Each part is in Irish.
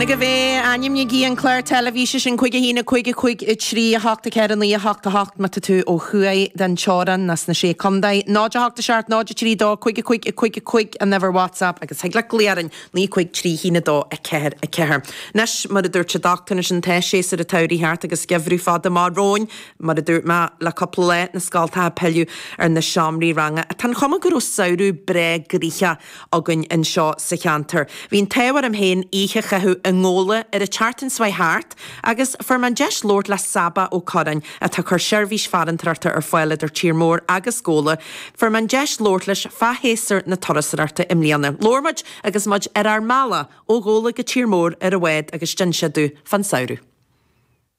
Ag a bhé, ainmnígí an clár teilifíse sin cúig, a haon, a cúig, a cúig, a trí, a hocht, a ceithre, a naoi, a hocht, a hocht, má tá tú ó thuaidh den teorainn, nó sna Sé Chontae, 0, 8, 7, 0, 3, 2, 5, a cúig, a cúig, a cúig, an uimhir WhatsApp agus thig leat glaoch orainn, naoi, cúig, trí, a haon, a dó, a ceathair, a ceathair. Anois, mar a dúirt an dochtúir, anois tá séasúr an tsamhraidh thart agus geimhreadh fada amach romhainn. Mar a dúirt mé le cúpla lá, na scoltacha ag pilleadh ar na seomraí ranga. Tá an chuma go raibh samhradh breá gnaitheach. againn anseo sa cheantar. Bhí an t-ádh orm féin oíche a chaitheamh i nGabhla ar an tseachtain seo chuaigh thart agus fuair mé an deis labhairt le Sabba Ó Curráin atá ag cur seirbhís farantóireachta ar fáil idir Tír Mór agus Gabhla. Fuair mé an deis labhairt leis fá shéasúr na turasóireachta i mbliana. Labhair muid agus muid ar ár mbealach ó Ghabhla go Tír Mór ar a bhád agus d'inis sé domh fán samhradh.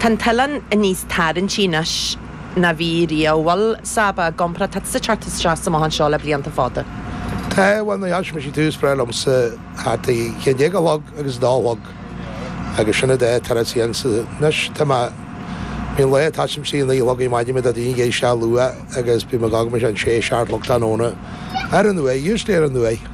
Tá an t-oileán níos tarraingtí anois ná bhí riamh, bhuel, Sabba i gcomparáid, tá tusa ag teacht isteach is amach anseo le blianta fada. Tá, bhuel, nuair a d'fhág mise tús breá liomsa thart ag a haon déag a chlog agus a dó a chlog agus sin fhad é tar is dhéan sa, anois tá mé, bíonn lae atá sin trí a naoi a chlog ar maidin le daoine ag éisteacht luath agus bím ag fhágaint mise an sé a seacht a chlog tráthnóna, ar ndóigh, usually ar ndóigh.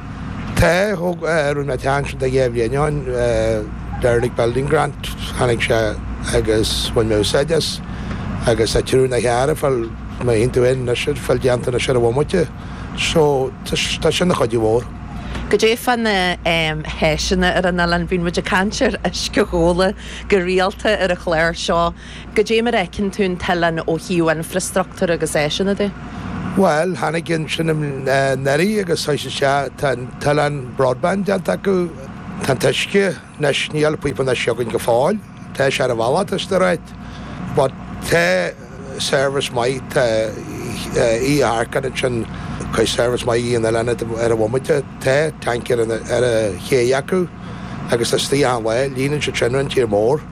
Tá rinne teann siad ag Aodh Bhréannáin Derelict Building Grant tháinig sé agus bhain mé úsáid as agus tá triúr na hearra fáil mé haon tú aon anois ar fáil déanta anois ar an bhomaite so tá sin ina chuidiú mhór. Goidé fá na háiseanna ar an oileán bíonn muid ag caint ar uisce Ghabhla go rialta ar an chlár seo. Goidé mar a fheiceann tú an t-oileán ó thaobh infreastruchtúr agus áiseanna de? Bhuel, tháinig ansin i ndeiridh agus tá sé sea, tá an t-oileán broadband déanta acu, tá an t-uisce anois, níl píopa anois againn go fóill, tá sé ar an bhealach, tá stoir ait, but tá service maith, tá iartharcáin ansin, tá service maith an oileáin ar an bhomaite, tá tancaer ar an chéidh acu agus isteach achan lá, líonann siad sin an tír mór.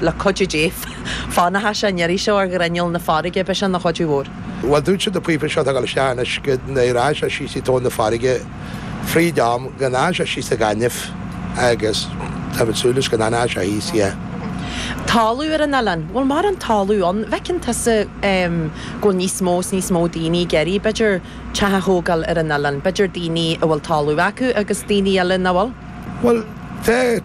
le cuidiú Dé, fanfaidh sé an iarraidh seo ar ghrinneall na farraige, b'shin an chuidiú mhór. Bhuel, dúirt siad na píopa seo atá agaibh isteach anois go n-éireoidh sé síos i dtóin na farraige fríd am, go n-éireoidh sé síos sa ghaineamh agus táimid súil leis go n-éireoidh sé thíos, yeah. Talamh ar an oileán, bhfuil mórán talamh ann? Bhfeiceann tusa go bhfuil níos mó is níos mó daoine ag iarraidh, b'fhéidir, teach a thógáil ar an oileán. B'fhéidir daoine a bhfuil talamh acu agus daoine eile nach bhfuil. Bhuel, tá.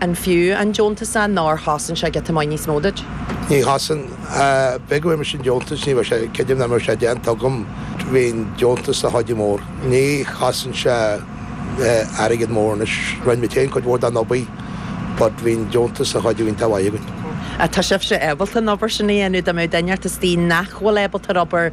An fiú an deontas nó ar chosain sé giota maith níos mó duit? Ní chosain. Ach ab é go bhfuair mise an deontas, ní bheadh sé, creidim nach mbeadh sé déanta agam bhí'n deontas ina chuidiú mór. Ní chosain sé airgead mór anois. Rinn muid féin cuid mhór den obair but bhí'n deontas ina chuidiú iontach mhaith againn. Tá sibhse ábalta an obair sin a dhéanamh, dá mbeadh duine inteacht istigh nach bhfuil ábalta an obair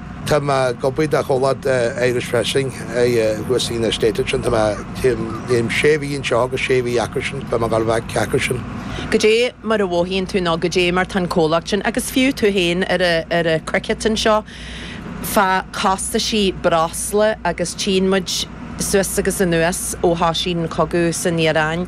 Tá mé ag obair do chomhlacht Irish Pressing thuas i na State ansin. Tá mé ag déanamh sé mhí anseo agus sé mhí acusan. Beidh mé ag dul back chucusan. Goidé mar a mhothaíonn tú nó goidé mar tá'n comhlacht sin agus fiú tú féin ar a' cricket anseo fá chostaisí breosla agus tchíonn muid iad suas agus anuas ó thoisigh an cogadh san Iaráin.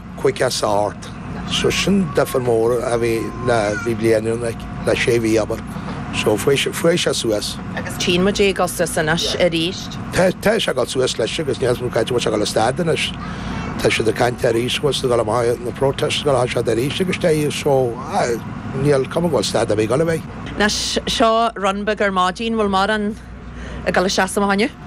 chuice sa art. So sin difir mór a bhí le bhí bliain ann ag le sé mhí abair. So fuair sé fuair sé suas. Agus tchíonn muid é ag dul suas anois arís. Tá tá sé ag dul suas leis agus níos mó cá háit a bhfuil sé ag dul a stad anois. Tá siad ag caint arís bhfuil siad ag dul amach na protestáil siad arís agus tá í so níl cuma go bhfuil stad ar bith ag dul a bheith. Anois seo run beag ar maidin bhfuil morán ag dul a seasamh acu inniu?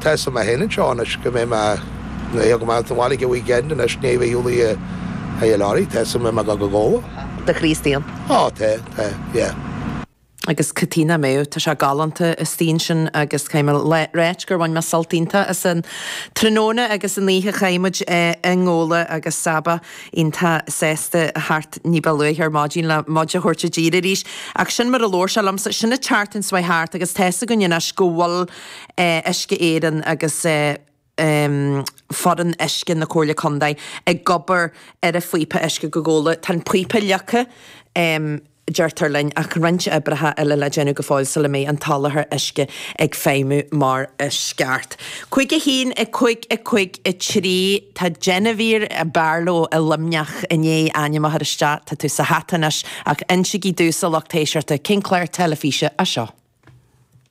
Tá suim mé féin anseo anois go mbeidh mé ag amach as an bhaile ag a weekend anois i ndiaidh a bheith i nGabhla a Laurie, tá suim a'm go go Gabhla. do Chríostaíonn? Ó tá, tá, yeah. agus Caitríona Mao, tá sé galánta istigh ansin agus caithfidh mé a ráit gur bhain mé sult iontach as an tráthnóna agus an oíche chaith muid i nGabhla agus Saba iontach sásta thart ní ba luaithe ar maidin le muid a thabhairt i dtír arís ach sin mar a labhair sé liomsa sin an tseachtain seo thart agus tá's againn anois go bhfuil Uisce Éireann agus foireann uisce na Comhairle Contae ag obair ar a phíopa uisce go Gabhla. Tá an píopa leagtha, deirtear linn, ach roinnt oibreacha eile le déanamh go fóill sula mbeidh an soláthar uisce ag feidhmiú mar is ceart. Cúig a haon, a cúig, a cúig a trí, tá Jennifer Barlow i Luimneach i ndiaidh ainm a chur isteach, tá tú sa hata anois, ach insigí domhsa a lucht éisteachta cén clár teilifíse é seo.